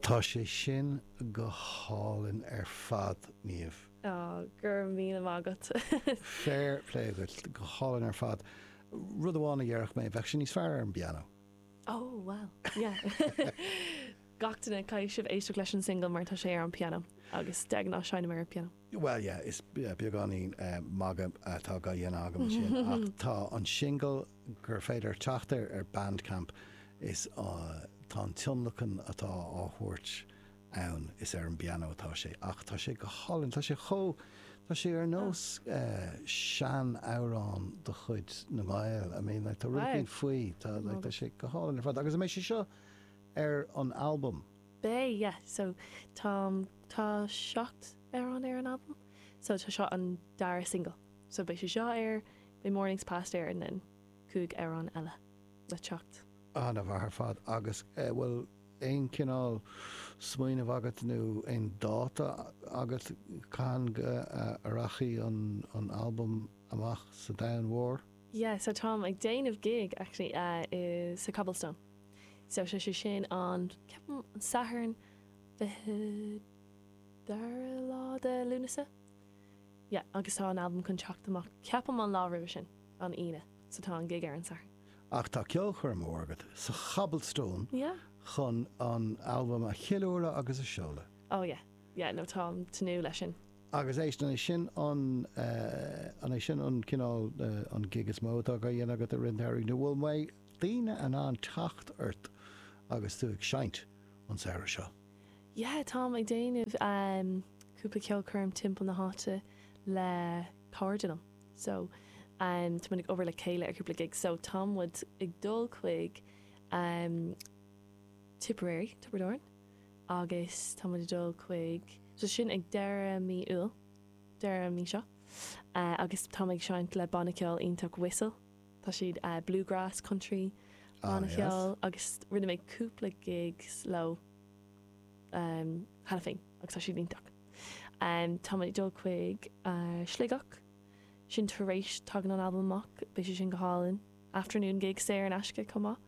Tá sé sin go hálainn ar fad, Niamh. Ó, go raibh míle maith agat. Féir plé dhuit. Go hálainn ar fad. Rud amháin a déarfadh mé, bheadh sé níos fearr ar an bpianó. Ó, bhuel, yeah. Gach duine, caithfidh sibh éisteacht leis an singil mar tá sé ar an bpianó agus de ghnáth seinnim ar an bpianó. Bhuel, yeah, is beagáinín magadh atá á dhéanamh agam ansin, ach tá an singil gur féidir teacht air ar Bandcamp is tá an tionlacan atá á thabhairt ann, is ar an bpianó atá sé, ach tá sé go hálainn, tá sé chomh, tá sé ar nós sean-amhrán de chuid na nGael, I mean, like, tá rud éigin faoi, tá sé go hálainn ar fad, agus, I mean, beidh sé seo ar an albam. Beidh, yeah. So, tá, tá seacht amhrán ar an albam. So, tá seo an dara singil. So, beidh sé seo air, beidh Mornings Past air and then cúig amhrán eile le teacht. An-mhaith ar fad. Agus eh, bhfuil aon cineál smaoineamh agat nó aon dáta agat cathain go rachaidh an, an albam amach sa domhan mhór? Yeah, so táim ag déanamh gig, actually, uh, i, sa Cobblestone. So sé sé sin an, ceapaim, an Satharn 22ú lá de Lúnasa. Yeah, agus tá an albam chun teacht amach, ceapaim, an lá roimhe sin, an Aoine, so tá an gig ar an Satharn. Á, tá ceolchoirm mhór agat, sa Cobblestone, Yeah. chun an albam a cheiliúradh agus a seoladh. Oh yeah, yeah, no, táim tnúth leis sin. Agus éist, an é sin an, an é sin an cineál, an gig is mó atá á dhéanamh agat i rith an tsamhraidh, nó bhfuil, daoine in ann teacht ort agus tú ag seinnt an samhradh seo? Yeah, táim ag déanamh cúpla ceolchoirm timpeall na háite le cairde liom. So, tá muid ag obair le chéile ar cúpla gig. So, tá muid ag dul chuig Tipperary, Tiobraid Árann agus tá muid ag dul chuig, so sin ag deireadh mí Iúil, deireadh an mhí seo, agus táim ag seinnt le banna ceoil iontach Whistle. Tá siad bluegrass, country, an-cheol agus rinne mé cúpla gigs leo cheana féin agus tá siad iontach. Tá muid ag dul chuig Sligeach, sin tar éis, tagann an albam amach, beidh sé sin go hálainn. Afternoon gig saor in aisce chomh maith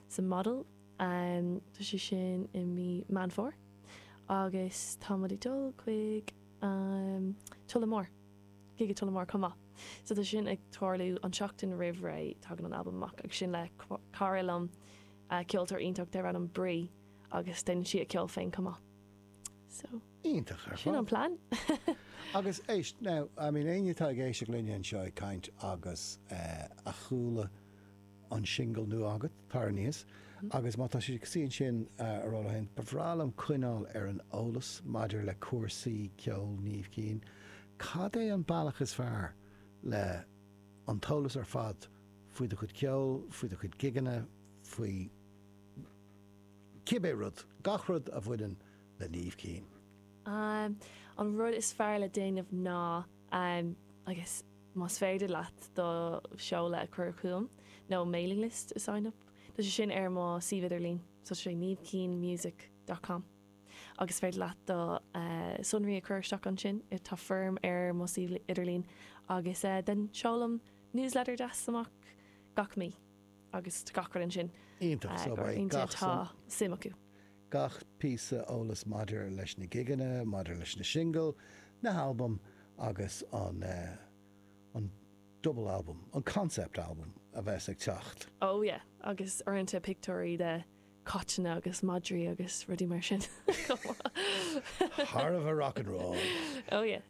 sa Model, tá sé sin i mí Meán Fómhair. Agus tá muid ag dul chuig Tullamore. chuig Tullamore chomh maith. So tá sin ag tarlú an tseachtain roimh ré tagann an albam amach agus sin le cara liom, ceoltóir iontach dar ainm Bri agus déanann sí a ceol féin chomh maith. So Iontach ar fad. sin an plean. Agus éist, now, I mean, éinne atá ag éisteacht linne anseo ag caint agus a chuala an singil nua agat, tar éis má tá sé cosúil ansin a rá leo, hey, ba bhreá liom coinneáil ar an eolas maidir le cúrsaí ceoil Niamh Keane. Cad é an bealach is fearr le an t-eolas ar fad faoi do chuid ceoil, faoi do chuid gigeanna, faoi cibé rud, gach rud a bhaineann le Niamh Keane? An rud is fearr le déanamh ná agus. más féidir leat do sheoladh a chur chugam nó mailing list a sign up tá sé ar mo suíomh idirlín so sé niamhkeanemusic dot com agus is féidir leat do shonraí a chur isteach ansin, tá foirm ar mo suíomh idirlín agus then seolaim newsletter deas amach gach mí agus tá gach rud ansin iontach so beidh gach atá suim acu. Gach píosa eolas maidir leis na gigeanna, maidir leis na singil, na halbaim agus an an double album, an concept album a bheas ag teacht. Oh yeah, agus uaireanta pictiúirí de caiteanna agus madraí agus rudaí mar sin chomh maith. Thar a bheith rock and roll! Oh yeah.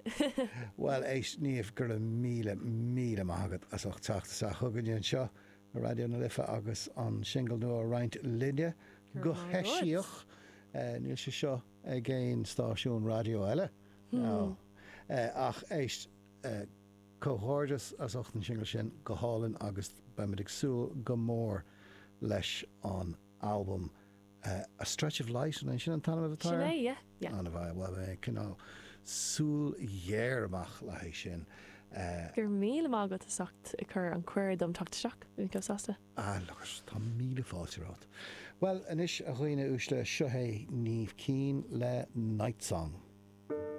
Bhuel, éist, Niamh, go raibh míle, míle maith agat as ucht teacht isteach chugainne anseo. Raidió na Life agus an singil nua a roinnt linne go heisiach. Níl sé seo ag aon stáisiún raidió eile, ach éist. Comhghairdeas as ucht an singil sin, go hálainn agus beimid ag súil go mór leis an albam. A stretch of light, an é sin an t-ainm atá air? Sin é, yeah, yeah. Beidh, bhuel, eh, coinneáil súil ghéar amach le haghaidh sin. Eh. Go raibh míle maith agat as ucht a chur an cuireadh dom teacht isteach. Bhí mé chomh sásta. Ah, look it, tá míle fáilte romhat. Bhuel, anois, a dhaoine uaisle, seo é Niamh Keane le Night Song.